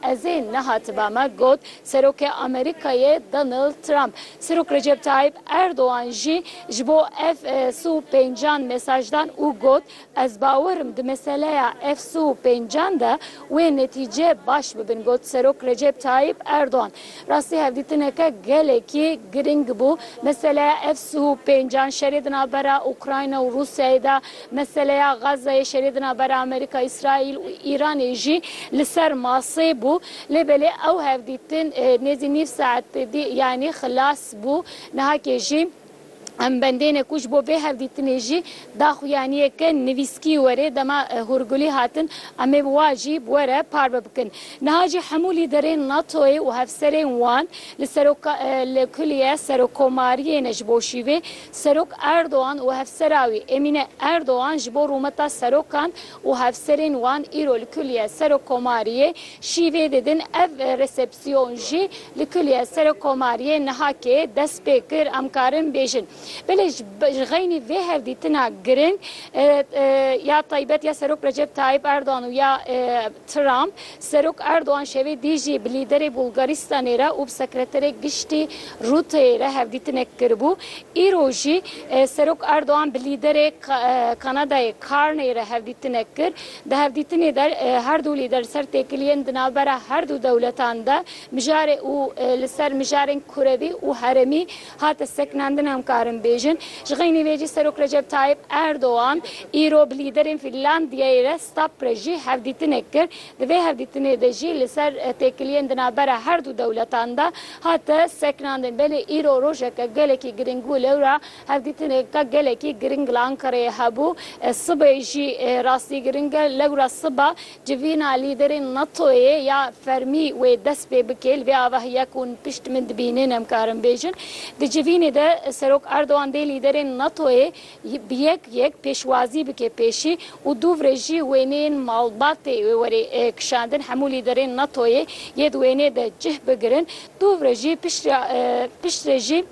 Ez ê nehatiba me got Serokê Amerîkayê Donald Trump. Serok Recep Tayyip Erdogan jî ji bo ev sû pêncan mesaj dan û got, Ez bawer im di meseleya ev sû pêncan de wê netîce baş bibin got Serok Recep Tayyip Erdogan. Rastî hevdîtineke gelekî girîng bû. Meseleya ev sih û pêncan, şerê di navbera Ukrayna û Rûsyayê de, meseleya Gazayê, şerê di navbera Amerîka, Îsraîl û Îranê jî li ser masê bû. Lê belê ew hevdîtin nêzî nîv saet pêdî yanî xilas bû. Nihakê jî Em bendêne ku ji bo vê hevdîtinê jî daxuyaniyê ke nivîskî were dema Hûrgulî hatin em ê wa jî bi we re parve bikin. Niha jî hemû lîderên NATO'yê û hevserên wan li seroka li kuliye serokomariyê ne ji bo şîvê Serok Erdogan û hevsera wî Emîne Erdogan ji bo rûmeta serokan û hevserên wan îro li kuliye serokomariyê şîvê didin ev resepsiyon Sîyon jî li kulîyê Serokomariyê Nihakê dest pê kir. Em karin bêjin belê ji xeynî vê hevdîtina giring ya taybet ya Serok Recep Tayyip Erdogan û ya Trump, Serok Erdogan şevê dî jî bi lîderê Bulgaristanê re û bi sekreterê giştî Rûteyê re hevdîtinek kiribû. Îro jî Serok Erdogan bi lîderê Kanadayê Carney re hevdîtinek kir. Di hevdîtinê de her du lîder li ser têkiliyên di navbera her du dewletan de mijarê û li ser mijarên kurevî û herêmî hate sekinandin em karin bêjin. Ji xeynî vê jî Serok Recep Tayyip Erdogan îro bi lîderên Fînlandiyeyê re stap re jî hevdîtinek kir. Di vê hevdîtinê de jî li ser têkiliyên di navbera her du dewletan de hate sekinandin. Belê îro rojeke gelekî girîng bû lewra Hevdîtineke gelekî giring li Ankarayê hebû. Sibê jî rastî giring e. Lewra siba civîna lîderên NATO'yê ya fermî wê dest pê bike. Li vê ava heye ku hûn pişt min dibînin em karin bêjin. Di civînê de Serok Erdogan dê lîderên NATO'yê bi yek yek pêşwazî bike pêşî û dûvre jî wêneyên malbatê wê were kişandin. Hemû lîderên NATO'yê yê di wêneyê de cih bigirin. Dûvre jî piştre jî.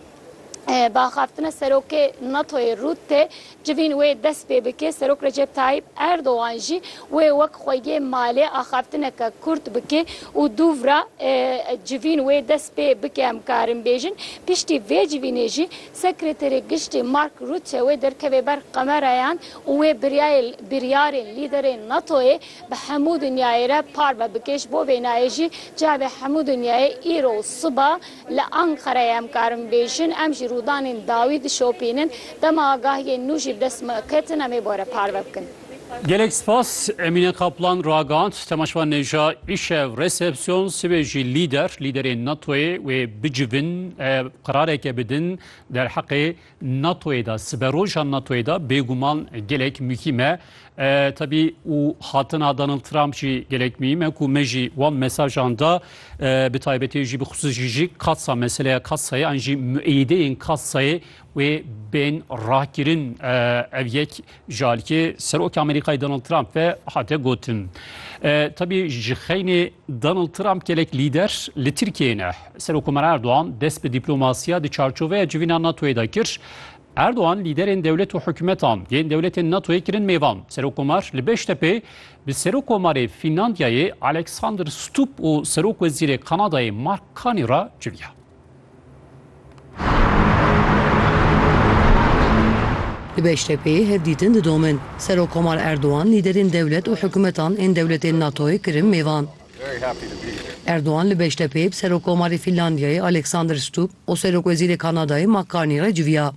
bi axaftine serokê NATO'yê Rutte civîn wê dest pê bike, Serok Recep Tayyip Erdogan jî wê wek xweyê malê axaftineke kurt bike û dûv re civîn wê dest pê bike em karin bêjin. Piştî vê civînê jî Sekreterê Giştî Mark Rutte wê derkeve ber qemerayan û wê biryayê biryarên lîderên NATO'yê bi hemû dinyayê re parve bike. Ji bo vê nayê jî cavê hemû dinyayê îro siba, Li Ankarayê em karin bêjin em jî rûdanên dawî dişopînin, dema agahiyên nû jî bi dest me ketin em ê bore parve bikin. Gelek spas Emîne Kaplan ragihand temaşevan nêja îşev resepsiyon sibê jî lîder lîderên NATOyê wê bicivin û qerareke bidin derheqê NATO'yê de, siberoja NATO'yê de bêguman gelek muhîm e. Tebî û hatina Donald Trump jî gelek muhîm e ku me jî wan mesajan da bi taybetî jî bi xisûsî jî katsa meseleya katsayê an jî mueyîdeyên katsayê wê bên rakirin. Ev yek ji aliyê Serokê Amerîkayê Donald Trump ve hate gotin. Tebî ji xeynê Donald Trump gelek lîder li Tirkiyeyê ne. Serokomara Erdogan dest bi dîplomasiya di çarçoveya civîna NATOyê de kir. Erdogan lîderên dewlet û hikûmetan yên dewletên NATOyê kirin mêvan. Serokomar li Beştepê bi Serokomarê Fînlandiyayê Alexander Stubb û Serokwezîrê Kanadayê Mark Carney re civiya. Di Beştepêyê hevdîtin didomin. Serokkomar Erdogan lîderên dewlet û hikûmetan ên dewletên NATO'yê kirin mêvan. Erdogan li Beştepêyê bi Serokkomarê Fînlandiyayê Alexander Stubb û Serokwezîrê Kanadayê Mark Carney re civiya.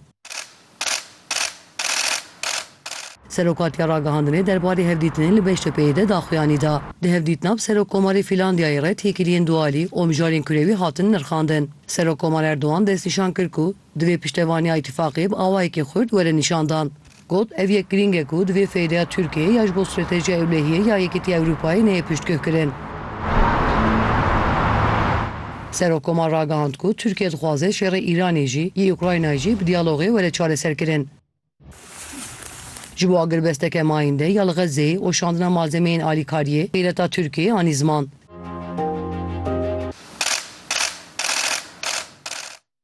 Serokatiya Ragihandinê derbarê hevdîtinê li Beştepeyê de daxuyanî da. Di hevdîtina bi Serokkomarê Fîlandiyayê re têkiliyên dualî û mijarên kurewî hatin nirxandin. Serokkomar Erdogan destnîşan kir ku divê piştevaniya îtîfaqê bi awayekî xurt were nîşandan. Got, Ev yek girîng e ku divê feydeya Tirkiyeyê ya ji bo stratejiya ewlehiyê ya Yekîtiya Ewropayê neyê piştgihkirin. Serokkomar ragihand ku Tirkiye dixwaze şerê Îranê jî yê Ukraynayê jî bi diyalogê were çareserkirin. Ji bo agirbesteke mayînde ya li Xezzeyê û şandina malzemeyên alîkariyê, xîreta Tirkiyeyê anî ziman.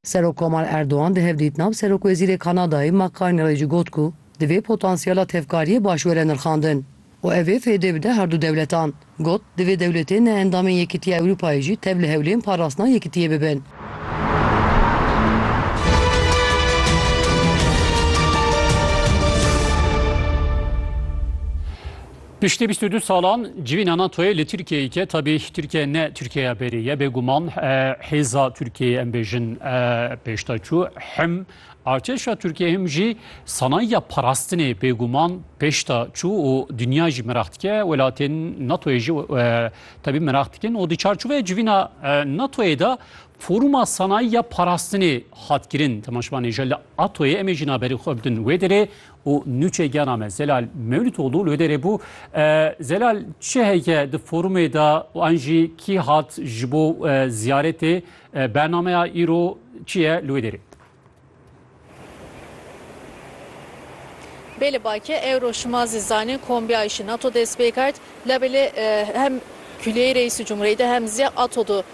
Serokkomal Erdogan di hevdîtina bi Serokwezîrê Kanadayê Mark Carney re jî got ku divê potansiyala tevkariyê baş were nirxandin û ev ê fêdê bide herdu dewletan. Got, Divê dewletên ne endamên Yekîtiya Ewropayê jî tev li hewlên parastina yekitiyê bibin. Piştî bîst û du salan civîna NATO'yê li Tirkiyeyê ke tabî Tirkiye ne Tirkiyeya berê ye bêguman hêza Tirkiyeyê em bêjin pêşda çû him artêşa Tirkiyeyê him jî sanayiya parastinê bêguman pêşda çû û dinya jî miraq dike welatên NATO'yê jî tabî miraq dikin û di çarçoveyê civîna NATO'yê de foruma sanayiya parastinê hat kirin temaşvanê ji li ATO'yê em ê jî naberî xwe bidin wê derê û nûçegiyana me Zelal Mewlûtoglû li wê derê bû. Zelal çi heye di forumê de û an jî kî hat ji bo ziyaretê bernameya îro çi ye li wê derê? Bê li bake ewro şima zî zanîn kombiya îşî NATO dest pê kerd. Labelê hem Kulîyeyê Reîsî Cumhurîyê de hem zî ATO'du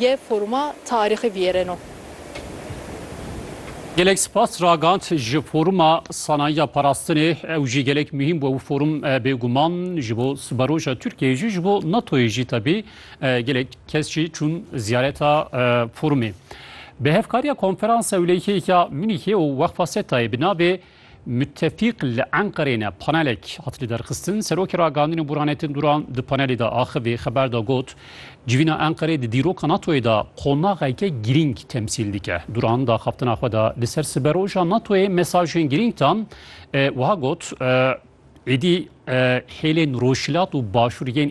Yê foruma tarîxî viyêreno. Gelek spas ragand ji foruma sanayiya parastinê ew jî gelek muhîm bû ew forum bêguman ji bo siberoja Tirkiyeyê jî ji bo NATOyê jî tevî gelek kes jî çûn ziyareta forumê. Bi hevkariya konferansa ewleyîkeyê ya Munîhê û Weqfa SETAyê bi navê Mutefîq li Enqereyê ne panelek hat lidarxistin. Serokê Ragandinê Burhanettin Duran di panelê de axivî xeber da got, Civîna Enqereyê di dîroka NATO'yê de qonaxeke girîng temsîl dike. Duran di axaftina xwe de li ser siberoja NATO'yê mesajên girîng da wiha got, Êdî hêlên rojhilat û başûr yên